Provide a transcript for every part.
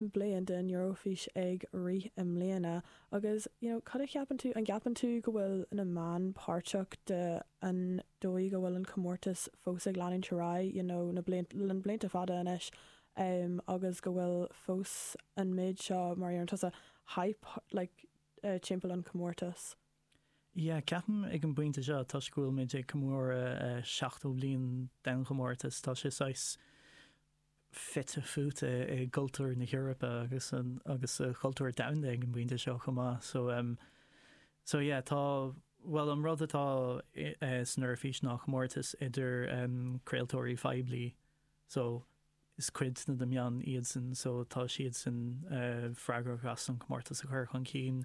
bliain den Eurofís ag rith i mbliana agus you know cad a cheapann tú, an gceapann tú go bhfuil na meáin páirteach de an dóigh a bhfuil an comórtas fós ag leanúint ar aghaidh you know na blianta, le na blianta fada anois em agus go bhfuil fós an méid seo mar a deireann tusa hype like timpeall an chomórtais? Yeah, ceapaim ag an bpointe seo toisc go bhfuil muid ag comóradh 70 bliain den chomórtas tá sé saghas, fite fuaite i gcultúr na hEorpa agus agus sa chultúr domhanda ag an bpointe seo chomh maith. So em so yeah tá bhuel an rud atá eh san Eoraifís ná comórtas idir em craoltóirí phoiblí so is cuid de na meáin iadsan so tá siadsan eh freagrach as an chomórtas a chur chun cinn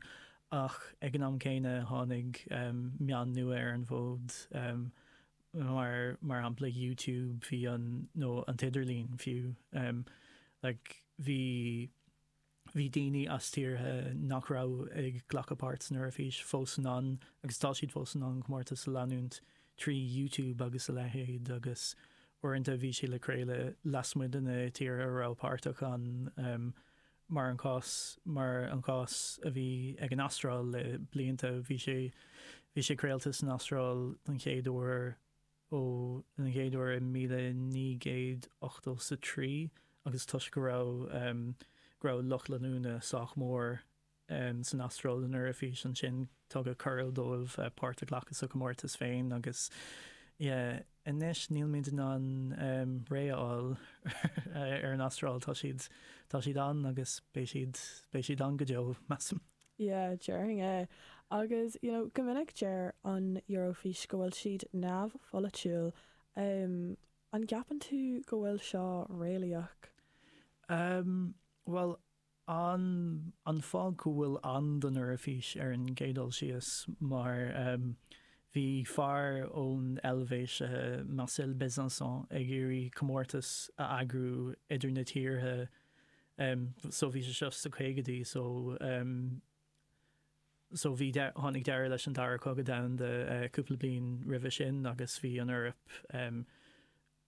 ach ag an am céanna tháinig em meáin nua ar an bhfód em mar mar shampla YouTube bhí an nó an t-idirlíon fiú em like bhí bhí daoine as tíortha nach raibh ag glacadh páirt san Eoraifís fós in ann agus tá siad fós in ann comórtas a leanúint trí YouTube agus a leithéid agus uaireanta bhí sé le craoladh lasmuigh de na tíortha a raibh páirteach ann em mar an cás, mar an cás a bhí ag an Astráil le blianta, bhí sé, bhí sé craolta san Astráil don chéad uair, ó, don chéad uair i míle naoi gcéad ochtó 's a trí agus toisc go raibh, go raibh lucht leanúna sách mór san Astráil don Eoraifís ansin, tugadh cuireadh dóibh páirt a ghlacadh sa chomórtas féin agus yeah. Anois nílimid in ann réidh a fháil ar an Astráil, tá siad, tá siad ann agus beidh siad, beidh siad ann go deo, measaim. Yeah, déarfainn é. Agus, you know, go minic deir an Eurofís go bhfuil siad neamhpholaitiúil. An gceapann tú go bhfuil seo réalaíoch? Bhuel, An an fáth go bhfuil ann don Eoraifís ar an gcéad dul síos mar bhí fear ón Eilvéis, Marcel Bezençon, ag iarraidh comórtas a eagrú idir na tíortha so bhí sé seo sa caogadaí so so bhí tháinig deireadh leis an Dara Cogadh Domhanda cúpla bliain roimhe sin agus bhí an Eoraip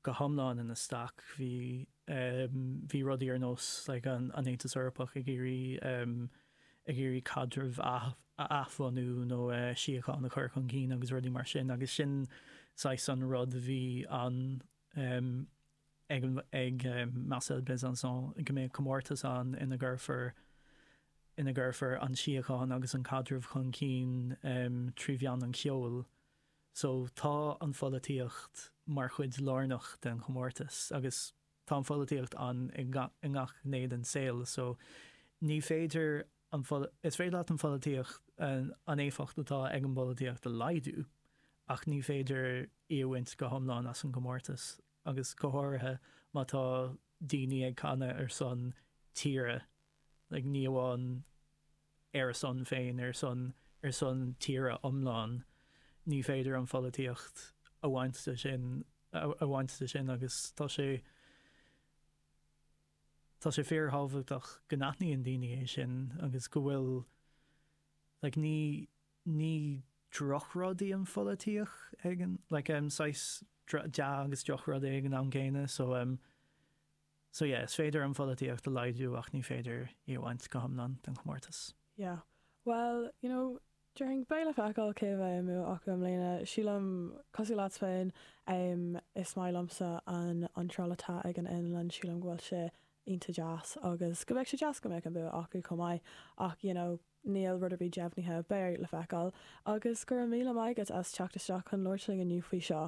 go hiomlán ina staic. Bhí bhí rudaí ar nós like an tAontas Eorpach ag iarraidh ag iarraidh caidreamh a athbhunú nó síocháin a chur chun cinn agus rudaí mar sin agus sin saghas an rud a bhí ann ag ag Marcel Bezençon go mbeadh comórtas ann ina gcuirfear ina gcuirfear an síocháin agus an caidreamh chun cinn trí mheán an cheoil. So, tá an pholaitíocht mar chuid lárnach den chomórtas, agus tá an pholaitíocht ann i i ngach gné den saol. So, ní féidir an is féidir leat an pholaitíocht, an éifeacht atá ag an bpolaitíocht a laghdú, ach ní féidir í a bhaint go hiomlán as an gcomórtas, agus go háirithe má tá daoine ag canadh ar son tíre, like, ní amháin. ar a son féin, ar son, ar son tíre iomlán. Ní féidir an pholaitíocht a bhaint de sin, a bhaint de sin agus tá sé, tá sé fíorthábhachtach go n-aithníonn daoine é sin agus go bhfuil, like ní, ní drochrud í an pholaitíocht ag an, like em, saghas dea agus drochrud é ag an am céanna, so em. So yeah, is féidir an pholaitíocht a laghdú ach ní féidir í a bhaint go hiomlán den chomórtas. Yeah. Bhuel, you know, déarfainn, beidh le feiceáil cé a bheidh an bua acu i mbliana. Sílim, cosúil leat féin, em, is maith liomsa an iontráil atá ag an Fhionlainn, sílim go bhfuil sé iontach deas agus go mbeadh sé deas go mbeadh an bua acu chomh maith ach, you know, níl rud ar bith deimhnithe, beidh le feiceáil. Agus go raibh míle maith agat as teacht isteach chun labhairt linn inniu faoi seo.